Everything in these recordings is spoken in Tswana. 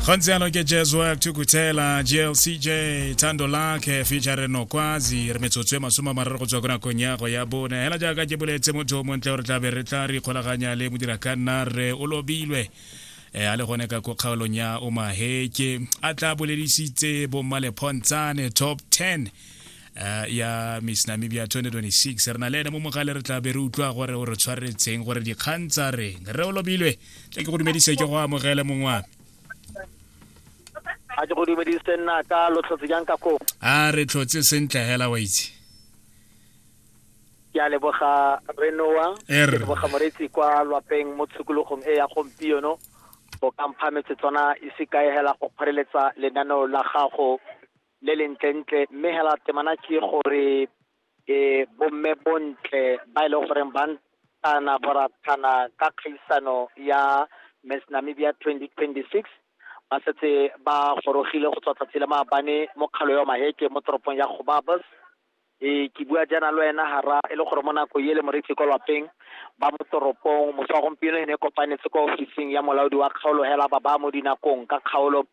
gontse yalo ke jeswell thukuthela glcj thando lakhe feature nokwazi re metsotso e masome a mararo go tswa ko nakong ya go ya bone hela jaaka ke boletse motho o montle gore tla be re tla re ikgolaganya le modira ka nna re o lobilwe eh, a le gone ka ko kgaolong ya omaheke a tla boledisitse bommalephontshane top 10 Eh, ya miss namibia 2026 re na le ene mo mogale re tla be re utlwa gore o re tshwaretseng gore dikgang tsa reng re o lobilwe tle ke go dumedise ke go amogele mongwa a ke go dumedise nna ka lo tlhotse jang ka koo a re tlhotse sentle hela wa itse ke a leboga renoa ke leboga moretsi kwa lwapeng mo tshokologong e ya gompieno o kampha metsetswana ise kae hela go kgoreletsa lenaneo la gago le le ntlentle mme hela temana ke gore e bomme bontle ba e leng gore ba ntana boratana ka kgaisano ya Miss Namibia 2026 ba setse ba gorogile go tswa tsatsi le maabane mo kgalo ya maheke mo toropong ya gobabos e ke bua jaana le wena hara e le gore mo nako e le moreetsi ko lapeng ba mo toropong moswa gompieno e ne e kopanetse kwa ofising ya molaodi wa kgaolo hela ba ba mo dinakong ka kgaolo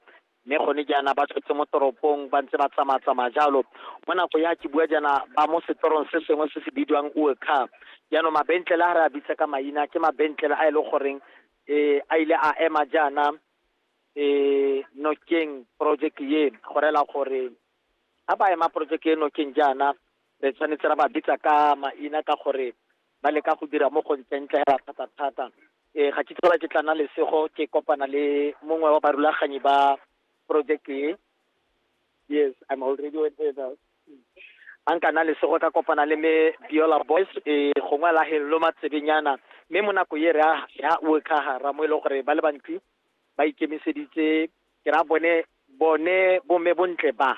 mme gone jaana ba tswetse mo toropong ba ntse ba tsamaya-tsamaya jalo mo nako ya ke bua jaana ba mo setorong se sengwe se se bidiwang uecar jaanong mabentlele a re a bitsa ka maina ke mabentlele a e leng goreng um a ile a ema jaana um nokeng project ye go rela gore ga ba ema project e nokeng jaana re tshwanetse ra ba bitsa ka maina ka gore ba leka go dira mo go ntseng tle hela thata thata e ga ke tlhola ke tla na lesego ke kopana le mongwe wa barulaganyi ba project e yes i'm already with it a nka na lesego ka kopana le me biola boys e gongwe la hello matsebenyana mme mo nako e re ya o ka hara mo e le gore ba le bantsi ba ikemiseditse ke ra bone bone bomme bontle ba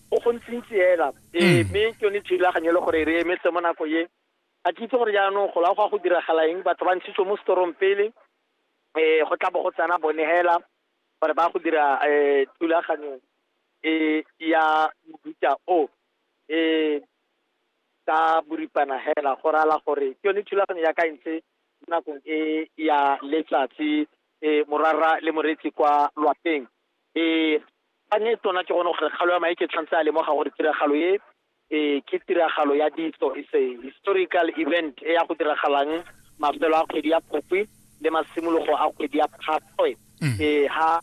go gontsintsi hela ee mme ke yone thulaganyo e le gore re emetse mo nako ye a ke itse gore jaanong go la go ya go diragala eng batho ba ntshitswe mo storong pele um go tla bo go tsena bone hela gore ba go dira um thulaganyo e ya mobuta o um ka boripana hela go rala gore ke yone thulaganyo ya ka e ntse mo nakong e ya letsatsi um morara le moretsi kwa lwapeng E, ka ne tona ke gone gore kgalo ya mae ke tshwanetse a lemoga gore tiragalo e e ke tiragalo ya ditso is a historical event e ya go diragalang mafelo a kgwedi ya phukwi le masimologo a kgwedi ya phatwe mm. e ha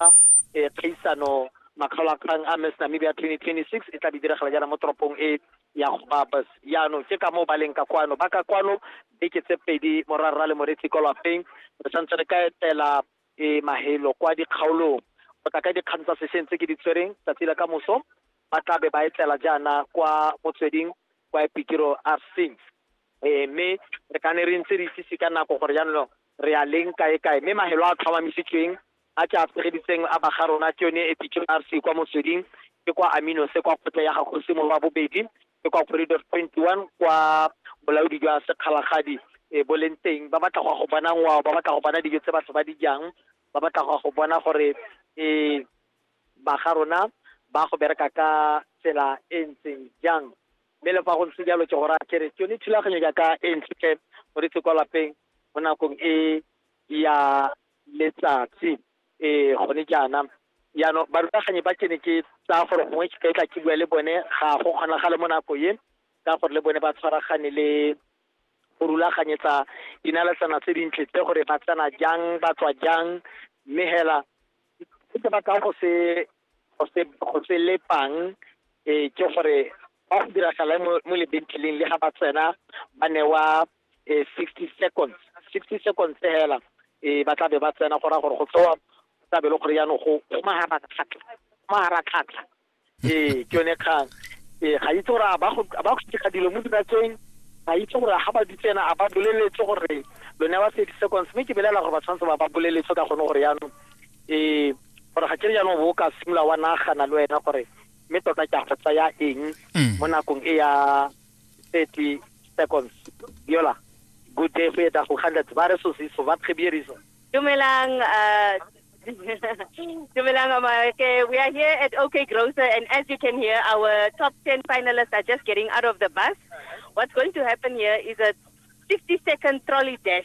e kgaisano makgaolakgang a miss namibia 2026 e tla be diragala jaana mo toropong e ya gobabas yaanong ke ka moo ba leng ka kwano ba ka kwano beke tse pedi morarra le moretsi kwa lapeng re tshwanetse re ka etela e mahelo kwa dikgaolong go tla ka dikgang tsa sešeng tse ke di tshwereng tsatsi la ka moso ba tla be ba etlela jaana kwa motsweding kwa epikiro a seng e mme re ka ne re ntse re itsise ka nako gore jaanong re a leng kae kae mme mahelo a tlhomamisitsweng a ke a tshegeditseng a baga rona ke yone epikiro a se kwa motsweding ke kwa aminose kwa kgotla ya gagosi mo wa bobedi ke kwa corridor 21 kwa bolaodi jwa sekgalagadi e bo leng teng ba batla go ya go bona ngwao ba batla go bona dijo tse batho ba di jang ba batla go ya go bona gore e ba ga rona ba go bereka ka tsela e ntseng jang mme le fa go ntse jalo ke go raya kere ke yone thulaganyo jaaka e ntshe go ditse kwa lapeng mo nakong e ya letsatsi ee gone jaana jaanong barutaganyi ba ke ne ke tsaya gore gongwe ke tla ke bua le bone ga go kgonagale mo nako e ka gore le bone ba tshwaragane le go rulaganyetsa dinaletsana tse dintle tse gore ba tsena jang ba tswa jang mme hela se batla go se go se go se lepang eh ke gore ba go diragala mo mo lebentleleng le ga ba tsena ba newa eh 60 seconds 60 seconds fela eh ba tla be ba tsena go ra gore go tsewa go tla be le gore yaanong go go mahara tlhatlha go mahara tlhatlha eh ke yone kgang eh ga itse gore a ba go a ba go dira dilo mo dinakeng ga itse gore ga ba di tsena a ba boleletse gore lo newa 30 seconds mme ke belela gore ba tshwanetse ba ba boleletse ka gone gore yaanong ee gore ga ke re jaanong bo o ka simolola wa nagana le wena gore mme tota ke a go tsaya eng Mm. mo nakong e ya thirty seconds yola good day go eta go kgandetse ba re sosiso ba phebierisa Dumelang, uh, Dumelang Amareke. We are here at OK Grocer, and as you can hear, our top 10 finalists are just getting out of the bus. What's going to happen here is a 50 second trolley dash.